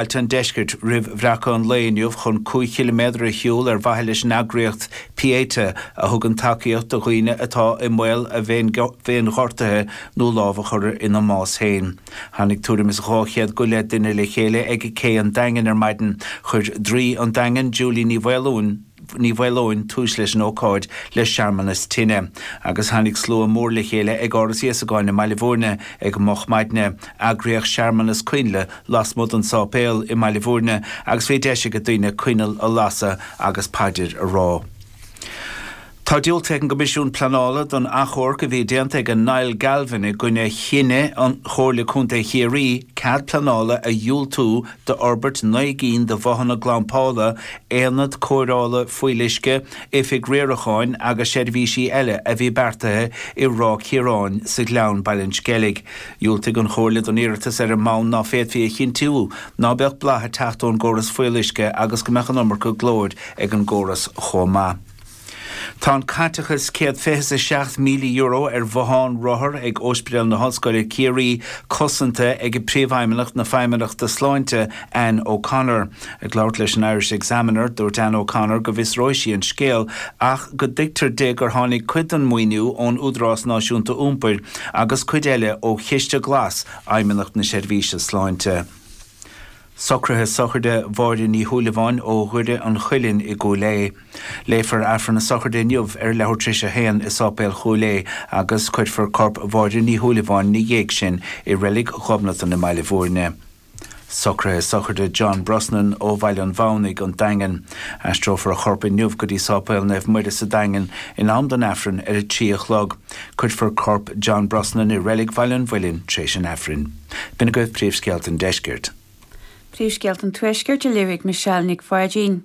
Ailt an Deiscirt roimh bhreacadh an lae inniu chun 5 chiliméadar a shiúl ar mhaithe leis an eagraíocht Pieta, a thugann tacaíocht do dhaoine atá i mbaol a bhféinghortaithe nó lámh a chur ina mbás féin. Tháinig tuairim is 200 go leith duine le chéile ag Cé an Daingin ar maidin. Chuir Draoi an Daingin, Julie Ní Mhaoileoin, Ní Mhaoileoin tús leis an ócáid le searmanas tine, agus tháinig slua mór le chéile ag Áras Íosagáin i mBaile Mhúirne ag moch maidne. Eagraíodh searmanas coinnle lasmuigh den sáipéal i mBaile Mhúirne agus bhí deis ag daoine coinneal a lasadh agus paidir a rá. Tá diúltaithe ag an gCoimisiún Pleanála don achomharc a bhí déanta ag Niall Galvin i gcoinne chinneadh an Chomhairle Contae Chiarraí cead pleanála a dhiúltú d'fhorbairt naoi gcinn de bhothanna glampála, aonad cóireála fuíolluisce, oifig riaracháin agus seirbhísí eile a bhí beartaithe i Ráth Ciaráin, sa Ghleann, Baile an Sceilg. Dhiúltaigh an Chomhairle don iarratas ar an mbonn ná féadfaí a chinntiú ná beadh boladh ag teacht ón gcóras fuíolluisce agus go mbeadh an iomarca glóir ag an gcóras chomh maith. Tá an caiteachas €127,000 ar bhothán rothar ag Ospidéal na hOllscoile Ciarraí cosanta ag Príomhfheidhmeannach na Feidhmeannachta Sláinte, Anne O'Connor. Ag labhairt leis an Irish Examiner, dúirt Anne O'Connor go bhfiosróidh sí an scéal ach go dtuigtear di gur tháinig cuid den mhaoiniú ón Údarás Náisiúnta Iompair agus cuid eile ó Chiste Glas Fheidhmeannacht na Seirbhíse Sláinte. Socruithe Sochraide Mháire Ní Shúilleabháin ó Dhoire an Chuilinn i gCúil Aodha. Léifear Aifreann na Sochraide inniu ar leathuair tréis a haon i Sáipéal Chúil Aodha agus cuirfear corp Mháire Ní Shúilleabháin ina dhiaidh sin i Reilig Ghobnatan i mBaile Mhúirne. Socruithe Sochraide John Brosnan ó Bhaile an Mhathamhnaigh, an Daingean. Aistreofar a chorp inniu go dtí Sáipéal Naomh Muire sa Daingean in am don Aifreann ar a trí a chlog. Cuirfear corp John Brosnan i Reilig Bhaile an Mhuilinn tréis an Aifrinn. B'in agaibh Príomhscéalta an Deiscirt. Príomhscéalta an Tuaiscirt a léirigh Michelle Nic Pháidín.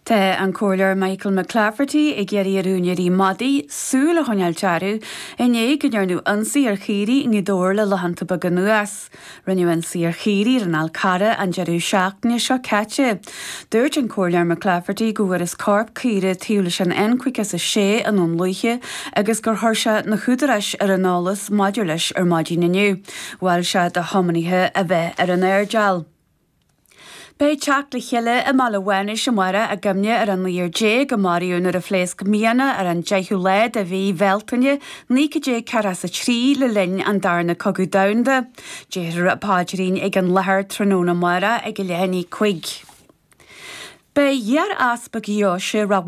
Tá an Comhairleoir Michael McClafferty ag iarraidh ar úinéirí madaí súil a choinneáil Dearbhaíodh inné go ndearnadh ionsaí ar chaoirigh i nGaoth Dobhair le laethanta beaga anuas. Rinneadh ionsaí ar chaoirigh ar an Fhal Carrach an deireadh seachtaine seo caite. Dúirt an Comhairleoir McClafferty go bhfuarthas corp caoire taobh leis an N56 i nDún Lúiche agus gur chuir sé na húdaráis ar an eolas maidir leis ar maidin inniu. Mhol sé do thiománaithe a bheith ar an airdeall. Beidh teacht le chéile i mBaile Mhánais amárach i gcuimhne ar an 19 a maraíodh nuair a phléasc mianach ar an 10ú lá de mhí Bhealtaine 1943 le linn an Darna Cogadh Domhanda. Déarfar paidrín ag an láthair tráthnóna amárach ag a leath i ndiaidh a cúig. Beidh iar-easpag Dheoise Ráth.